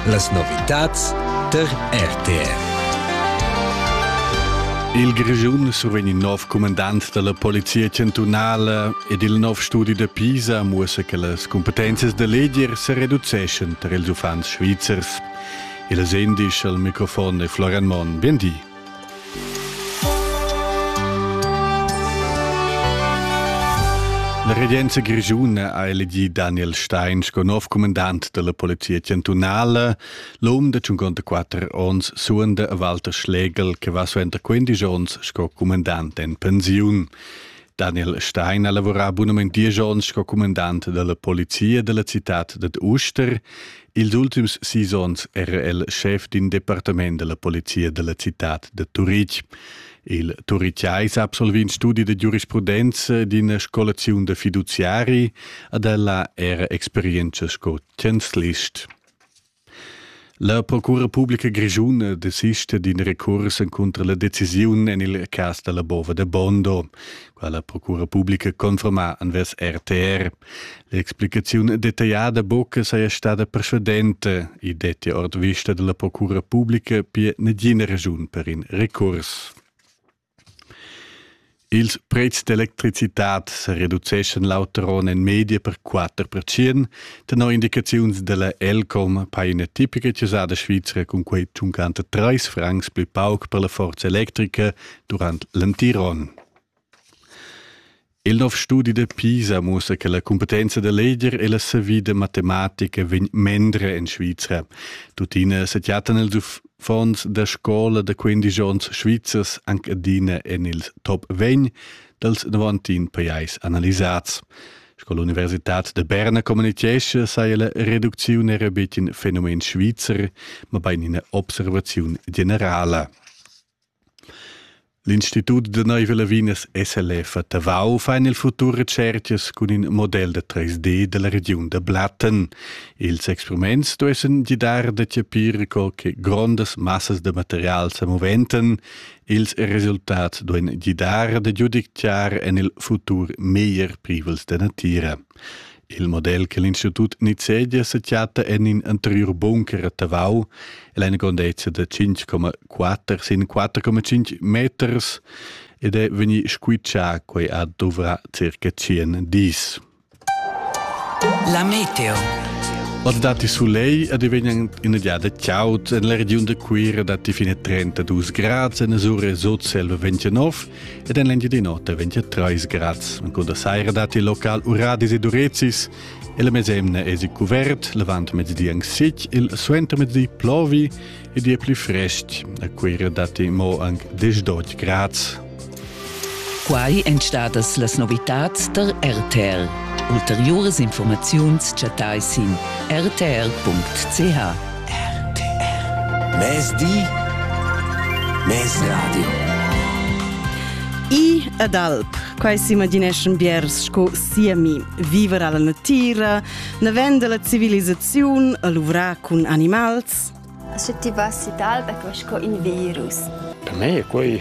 Las novitads tar RTR. Il Grischun survegn il nov comandant dalla Polizia chantunala ed il nov studi da Pisa muossa che las competences da leger se reduceschan tar ils uffants svizzers. Il sendisch al microfon è Florian Monn. Bien di. La regenza grischuna ha elegì Daniel Stein sco nov comandant dalla polizia chantunala. L'um de 54 onns suonda a Walter Schlegel che va suenter 15 onns sco comandant en pensiun. Daniel Stein ha lavorà bunament diesch onns sco comandant dalla polizia della cittad dad Uster. Ils ultims sis onns era el schef d'in departament della polizia della citad de Turitg. Il Turitgais absolvi in studi de giurisprudenza d'ina scolaziun de fiduziari ad ella era experienza sco chancelist. La Procura Publica Grischuna desista d'in recurs encunter la decisiun en il cas della bova de Bondo, quella Procura Publica conforma anvers RTR. L'explicaziun detagliada buca saja stada persuadenta, i detti ord vista dalla procura publica pia negina regiun per in recurs. Ils prezs d'electricitad se reduceschan l'auteron en media per 4 percient, tenor indicaziuns della Elcom paina tipica chiusada svizra cun quei tschuncanter 3 francs pli pauc per la forza electrica durant l'antiron. Il nov studi da Pisa mussa che la cumpetenza da leger e la savida matematica vegn mendra en Svizra. Tuttina sechiatan els uffants da scola da 15 onns svizzers anche adina en ils top 20 dals 90 pajais analisats. Sco l'Universitad de Berna communichesce, saja la reduziun era betg in fenomen svizzer, ma bein ina observaziun generala. L'Institut da neiva Lavinas SLF a Tavau fa en il futur retschercas cun in model da 3D dalla regiun da Blatten. Ils experiments duessen gidar da chapir co che grondas massas da material sa moventan. Ils resultats duein gidar da giudicare en il futur meglier privels da natira. Il model che l'Institut nizzegia sa chatta en in anteriur bunker a Tavau. El ha una grandezza da 5,4 sin 4,5 meters ed è vegnì squitschà quai a dovrà circa 100 dis. La meteo. Als dati Soleil ad vegnan in giada chaut en la regiun da Cuira datti fine 32 gradi en Azure sot selva 29 ed en l'Engiadin'Ota 23 grads. En da saira datti local uradis e durezis e la mesemna è cuvert, l'avant mezdi anc sic, il suentermezdi plovi ed è pli frest. A Cuira datti mo anche 10 grads. Quai èn stadas las novitads tar RTL. Ulteriuras informaziuns chattai sin rtl.ch. RTR Mezdi Mez Radio I ed alp Quai s'imagineschan biers sco siemi. Viver alla natira, navend la civilisaziun a luvrar cun animals. Sche ti vas in alp è quai sco in virus. Per me è quai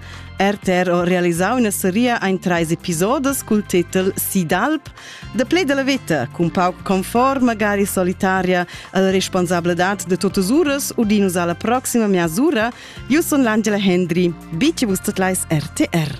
RTR ho realisau üna seria ein treis episodes cul titel Sidalp, da play della vita, cun pauc confort magari solitaria alla responsabladad de totas uras u dinus alla proxima miasura. Io sun l'Angela Hendry. Bici vus tot lais RTR.